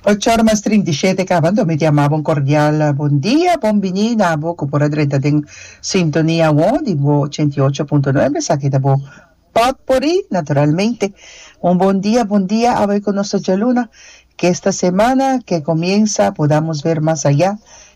Ocho ora mas trinta i shete kabando mi diamabo un kordial bon dia, bon bini na abo ku por a drenta den sintonia awor di bo ochenta i ocho punto nuebe, esaki ta bo pòt por i naturalmente. Un bon dia, bon dia awor ku nos ta djaluna. Ke esta semana ke komiensa podamos ver mas ayá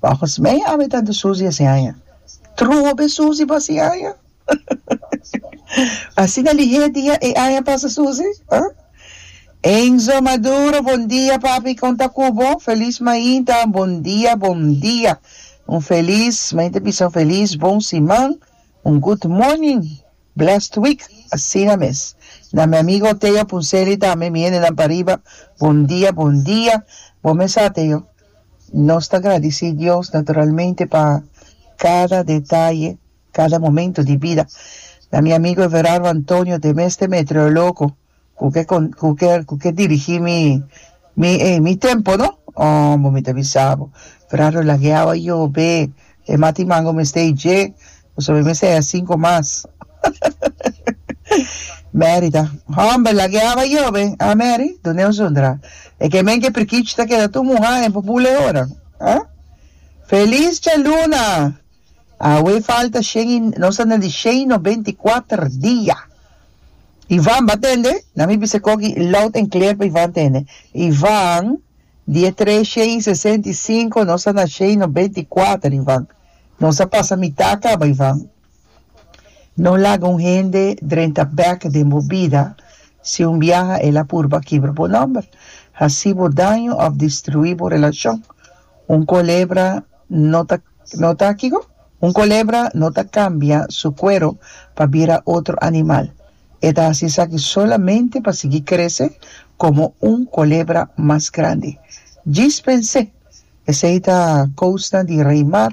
Volgens mij ami ta do Susi así aña. Trobe Susi bo así aña? Asina lihé dia e aña pasa Susi, ha? Enzo Maduro bon dia papi kon ta ku bo? Feliz mainta bon dia bon dia un feliz mainta bisa un feliz bon siman un good morning blessed week asina mes na mi amigo Teo Punselli tambe mi hendenan pariba bon dia bon dia bo mes sa Teo Nos ta gradici Dios naturalmente pa cada detaye, cada momento di bida. Na mi amigo Everardo Antonio te mester meteorologo cu ke cu ke cu ke dirigi mi mi ey mi tempo no hombo mi ta bisa bo Everardo lagueawa yobe e mati mango mester e dje Bo sabi mester a cinco mas. Mary ta, Homber, lag'e haba yo be, ah Mary? Dun'e un zundra. E ke men ke prikich ta keda tur muha en pupule ora. Ah? Feliz Djaluna! Awe falta shen i, nos ta na di shen i nobenta i kuater dia. Ivan, Ba tende? Na mi bisa koki loud en clear pa Ivan tende. Ivan, Di e tres shen i sesenta i cinco, nos ta na shen i nobenta i kuater, Ivan. Nos a pasa mitá a kaba i van. No laga un hende drenta bèk den bo bida, si un biaha el a purba kibra bo nòmber, hasi bo daño òf destruí bo relashon. Un kolebra no ta no ta kico? Un kolebra no ta kambia su kuero pa bira otro animal. E ta hasi esaki solamente pa sigui krese komo un kolebra mas grandi. Djis pens'é! Esei ta kousnan di rei mar.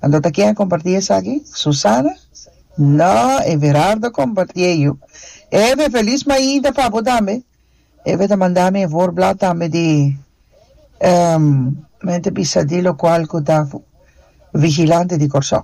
Anto ta ken a kompartí esaki? Susana? No, Everardo a kompartí e yu. Eve, felis mainta pa bo tambe. Eve ta manda mi e voorblad tambe di Mente Bisa di lokual ku ta vigilante di Kòrsou.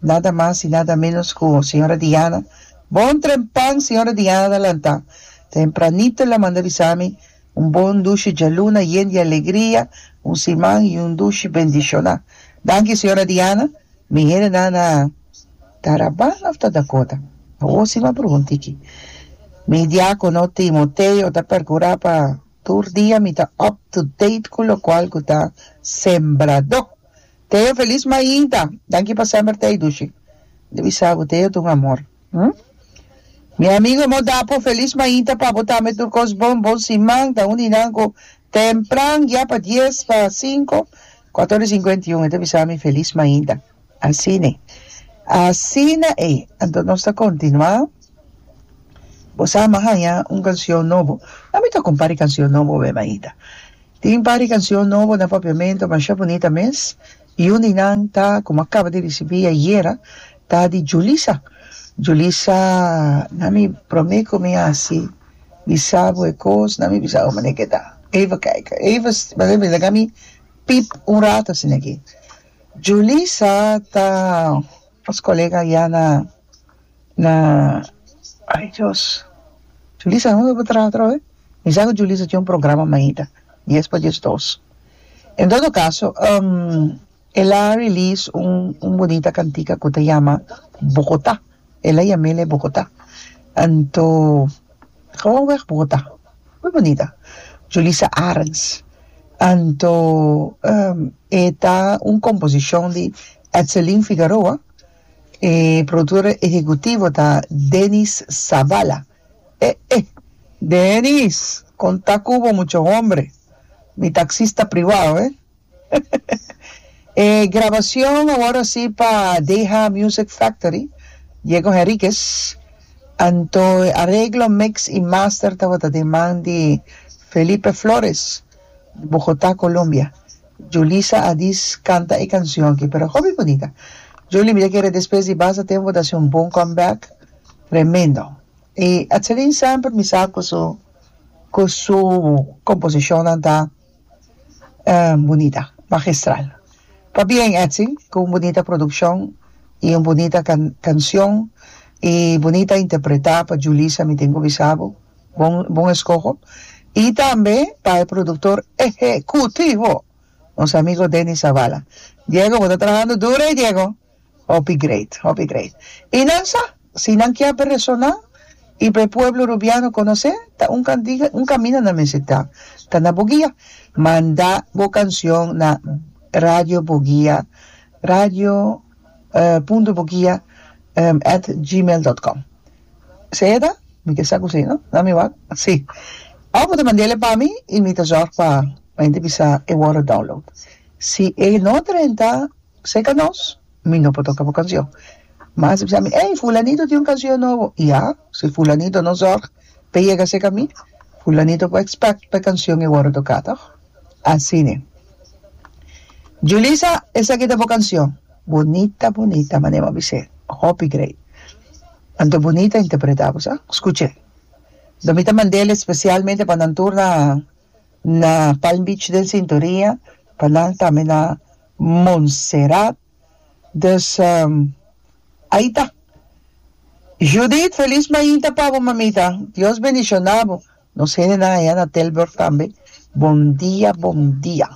Nada mas y nada menos cu Señora Diana. Bon trempan Señora Diana ta lanta. Tempranito ela manda bisa mi un bon dushi djaluna yen di alegria, un siman y un dushi bendiciona. Danki Señora Diana. Mi hendenan a ta Rabana of ta Dakota? Awo si m'a prugunda aki. Mi diacono Timoteo ta percura pa tur dia mi ta up to date cu locual cu ta sembrado. Teo felis maida danki pa sember tei dushi de bisa bo teo ta un amor hm mi amigo emo dapo felis maida pa bo tambe tur cos bon bon siman ta uni nan cu tempran ya pa dies pa cinco cuator y cincuenta y un e ta bisa mi felis maida asine asina e anto nos ta continua bo sa a mi a haña un cancion nobo a mi ta compari cancion nobo be maida. Tin par di cancion nobo na Papiamento masha bunita mes y un di nan ta como a caba di ricibi ayera ta di Julissa. Julissa na mi prome cu mi haci bisabo e cos na mi bisabo mane e keda eva kijk eva mane mi laga mi pip un rato asina aki. Julissa ta nos colega ya na Na ai Dios Julisa a hopi pa traha atrò eh mi sa ku Julisa tin un programa mainta dies pa dies dos en todo kaso el a release un un bonita kantika ku ta yama Bogota el a yam'e le Bogota anto Gewoon weg Bogota muy bonita Julisa Arends anto e ta un komposishon di Etselin Figaroa. E productor ehecutivo ta Dennis Zavala. Eh eh! Dennis! Con ta cu bo mucha hombre? Mi taxista privao, eh! E grabacion awor si pa Deha Music Factory, Diego Henriquez, anto e areglo, mix y master tabata den man di Felipe Flores, Bogota, Colombia. Julissa a dis canta e cancion aki pero hopi bunita Julie mi ta kere despues di basta tempo ta haci un bon come back tremendo y Atzalin semper mi sa cu su cu su composicionnan ta bunita magistral pa bien Etzi cu un bunita produccion y un bunita can cancion y bunita interpreta pa Julissa mi tin cu bisa bo. Bon bon eskoho y tambe pa e productor ehecutivo nos amigo Denny Zavala Diego bo ta trahando duro ey Diego hopi great hopi great y nan sa si nan kia beresona y pa e pueblo Rubiano conoce ta un cantiga un camino nan mester ta ta na boguia manda bo cancion na radio boguia radio punto boguia at gmail dot com Seda, Mi ke sa ku si, no? Nan mi wak? Si. Awe bo ta mand'ele pa mi i mi ta zòrg pa mi ta bisa e wòrdu download. Si e no ta renta serka nos, mi no por toka bo kansion. Mas e bisa mi, Ey, fulanito tin un kansion nobo. Ya, si fulanito no zòrg pa e yega serka mi, fulanito por expect pa e kansion e wòrdu toká, tòg? Asina. Julisa, esaki ta bo kansion. Bunita bunita manera bo a bis'é. Hopi grei. Anto bunita interpretá bo sa? Skuch'é. Anto mi ta mand'el espesialmente pa nan tur na na Palm Beach den sintonia, pa nan tambe na Montserrat. Dus ai ta. Judith, felis mainta pa bo mamita. Dios bendishoná bo. Nos hendenan ayá na Tilburg tambe, bon dia, bon dia.